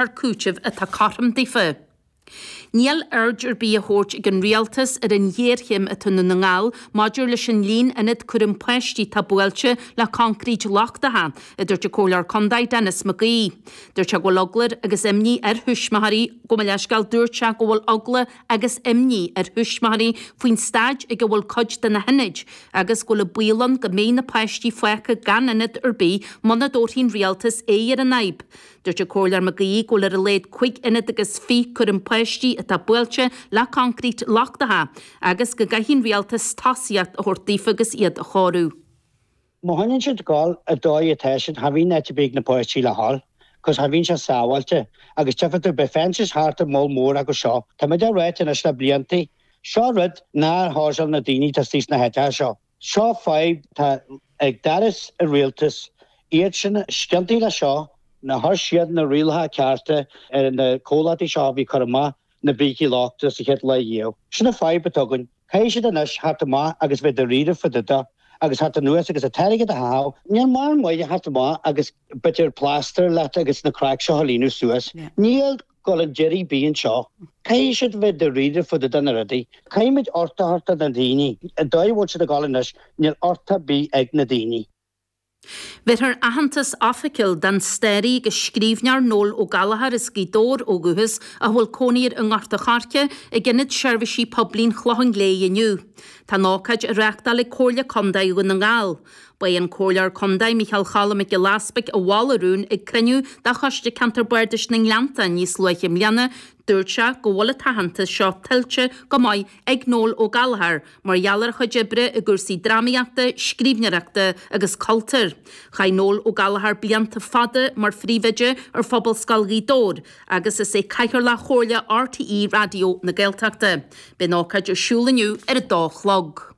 ar cúiteamh atá cothrom daofa. Níl aird ar bith á tabhairt ag an Rialtas ar an ghéarchéim atá i nDún na nGall maidir leis an líon ionad cúraim páistí atá buailte le concrete lochtacha, a dúirt an Comhairleoir Contae, Denis Mac Aoidh. Dúirt sé go bhfuil eagla agus imní ar thuismitheoirí Gabh mo leithscéal, dúirt sé go bhfuil eagla agus imní ar thuismitheoirí faoin staid ina bhfuil cuid de na hionaid agus go bhfuil an baol ann go mbeidh na páistí fágtha gan ionad ar bith muna dtabharfaidh an Rialtas aghaidh ar an fhadhb. Dúirt an Comhairleoir Mac Aoidh go bhfuil ar a laghad cúig ionad agus fiche cúraim páistí atá buailte le concrete lochtacha agus go gcaithfidh an Rialtas tosaíocht a thabhairt daofa agus iad a chóiriú. Má choinníonn siad ag dul an dóigh atá siad cha mbíonn áit ar bith ag na páistí le dhul cos cha mbíonn sé sábháilte agus tífidh tú beidh fences thart ar mholl mór acu seo. Tá muid á ráit anois le blianta, seo rud nár chásáil na daoine atá thíos sna háiteacha seo. seo fadhb atá ag doras an rialtais, iad sin is ciontaí leis seo, nár chuir siad na rialacha cearta ar na comhlachtaí seo a bhí ag cur amach na brící lochtacha sa chéad lá riamh. Sin an fhadhb atá againn. Caithfidh siad anois theacht amach agus bheith dáiríre fá dtaobh de agus theacht anuas agus an t-airgead a chaitheamh. Níl mórán maith daofa theacht amach agus bit of plaster leat agus na cracks seo a líonadh suas. Níl. ag dul a dhéanamh rud ar bith anseo. Caithfidh siad bheith dáiríre fá dtaobh de na rudaí. Caithfimid uchtach a thabhairt do na daoine. An dóigh a bhfuil siad ag dul anois, níl uchtach ar bith ag na daoine. Bhéarfar aitheantas oifigiúil don staraí agus scríbhneoir Noel Ó Gallchóir as Gaoth Dobhair ó dhúchas ach a bhfuil cónaí air i nGort a' Choirce, ag Ionad Seirbhísí Poiblí an Chlocháin Léith inniu. Tá an ócáid á reáchtáil ag Comhairle Contae Dhún na nGall. Ba é an Comhairleoir Contae Micheál Choilm Mac Giolla Easbuig a mhol an rún ag cruinniú de Choiste Ceantair Bardais na nGleanntán níos luaithe i mbliana, dúirt sé go bhfuil an t-aitheantas seo tuillte go maith ag Noel Ó Gallchóir mar gheall ar a chuid oibre i gcúrsaí drámaíochta, scríbhneoireachta agus cultúir. Chaith Noel Ó Gallchóir blianta fada mar Phríomhoide ar Phobalscoil Ghaoth Dobhair agus is é Cathaoirleach Chomhairle RTÉ Raidió na Gaeltachta. Beidh an ócáid ar siúl inniu ar a dó a chlog.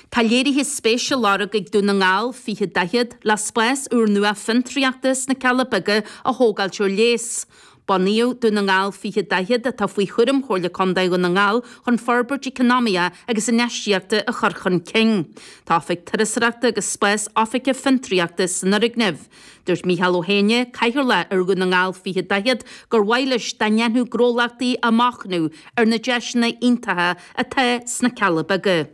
Tá léirithe spéise á lorg ag Dún na nGall 20 40 le spás úrnua fiontraíochta sna Cealla Beaga a thógáilt ar léas. Bunaíodh Dún na nGall 20 40, atá faoi chúram Chomhairle Contae Dhún na nGall, chun forbairt eacnamaíoch agus infheistíochta a chur chun cinn. Tá oifig turasóireachta agus spás oifige fiontraíochta san fhoirgneamh. Dúirt Mícheál Ó hÉanaigh, Cathaoirleach ar Dhún na nGall 2040, gur mhaith leis dá ndéanfadh gnólachtaí machnamh ar na deiseanna iontacha atá sna Cealla Beaga.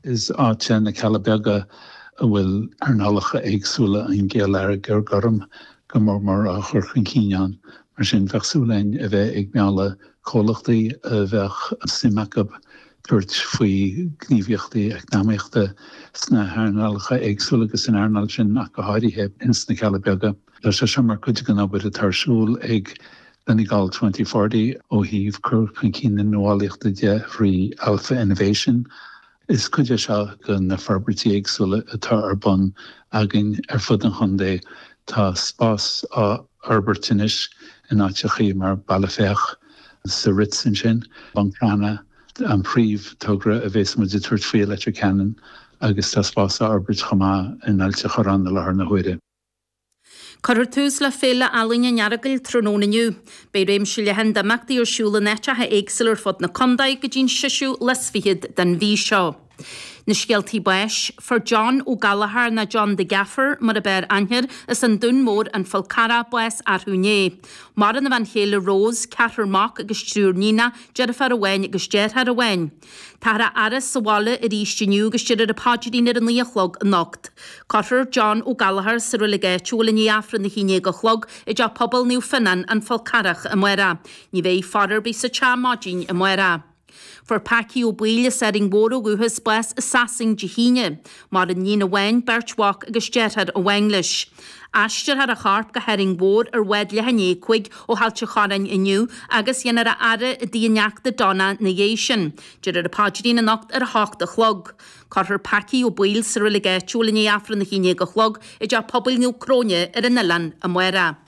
Is áit é na Cealla Beaga a bhfuil earnálacha éagsúla an gheilleagair ghoirm go mór mór á chur chun cinn ann, mar sin bheadh súil againn a bheith ag mealladh comhlachtaí a mbeadh suim acu tabhairt faoi ghníomhaíochtaí eacnamaíochta sna hearnálacha éagsúla agus san earnáil sin ach go háirithe, ins na Cealla Beaga. Tá sé seo mar chuid den obair atá ar siúl ag Donegal Twenty Forty ó thaobh cur chun cinn na nuálaíochta de thrí Alpha Innovation. Is cuid é seo de na forbairtí éagsúla atá ar bun againn ar fud an chontae. Tá spás á fhorbairt anois in áiteachaí mar Bealach Féich, sa Ritz ansin, Buncrana an príomh-togra a bhéas muid ag tabhairt faoi i Leitir Ceanainn agus tá spás á fhorbairt chomh maith in Ailt a' Chorráin i láthair na huaire. Cuirfear tús le Féile Ealaíne an Earagail tráthnóna inniu. Beidh réimse leathan d'imeachtaí ar siúl in áiteacha éagsúla ar fud na condae go dtí'n seisiú lá is fichead den mhí seo. Na scéaltaí báis, fuair John Ó Gallchóir nó John the Gaffer mar ab fhearr aithne air as an Dún Mór an Fál Carrach, bás arú inné. Maireann a bhean chéile Rose, ceathrar mac agus triúr níonacha, deirfiúr amháin agus deartháir amháin. Táthar á fhaire sa bhaile arís inniu agus déarfar an paidrín ar a naoi a chlog anocht. Cuirfear John Ó Gallchóir sa roilig áitiúil i ndiaidh Aifreann a haon déag a chlog i dteach pobail Naomh Fionáin, an Fál Carrach, amárach. Ní bheidh faire ar bith sa teach maidin amárach. Fuair Packy Ó Baoill as Árainn Mhór ó dhúchas bás i Sasain Dé hAoine. Maireann níon amháin, beirt mhac agus deartháir amháin leis. Aistreofar a chorp go hÁrainn Mhór ar bhád leath i ndiaidh a cúig ó Ailt an Chorráin inniu agus déanfar a fhaire i dtigh a neachta Donna 'na dhéidh sin. Déarfar an paidrín anocht ar a h-ocht a chlog. Cuirfear Packy Ó Baoill sa roilig áitiúil i ndiaidh Aifreann a h-aon-dhéag a chlog i dTeach Pobail Naomh Cróine ar an Oileán amárach.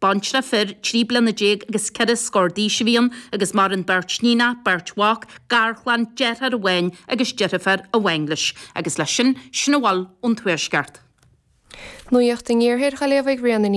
baintreach fir, trí bliana déag agus ceithre scór d'aois a bhí ann, agus maireann beirt níonacha, beirt mhac, garchlann, deartháir amháin agus deirfiúr amháin leis. Agus leis sin, sin a bhfuil ón tuaisceart. Nuaíocht an Iarthair Ghaillimh ag Ríona Ní.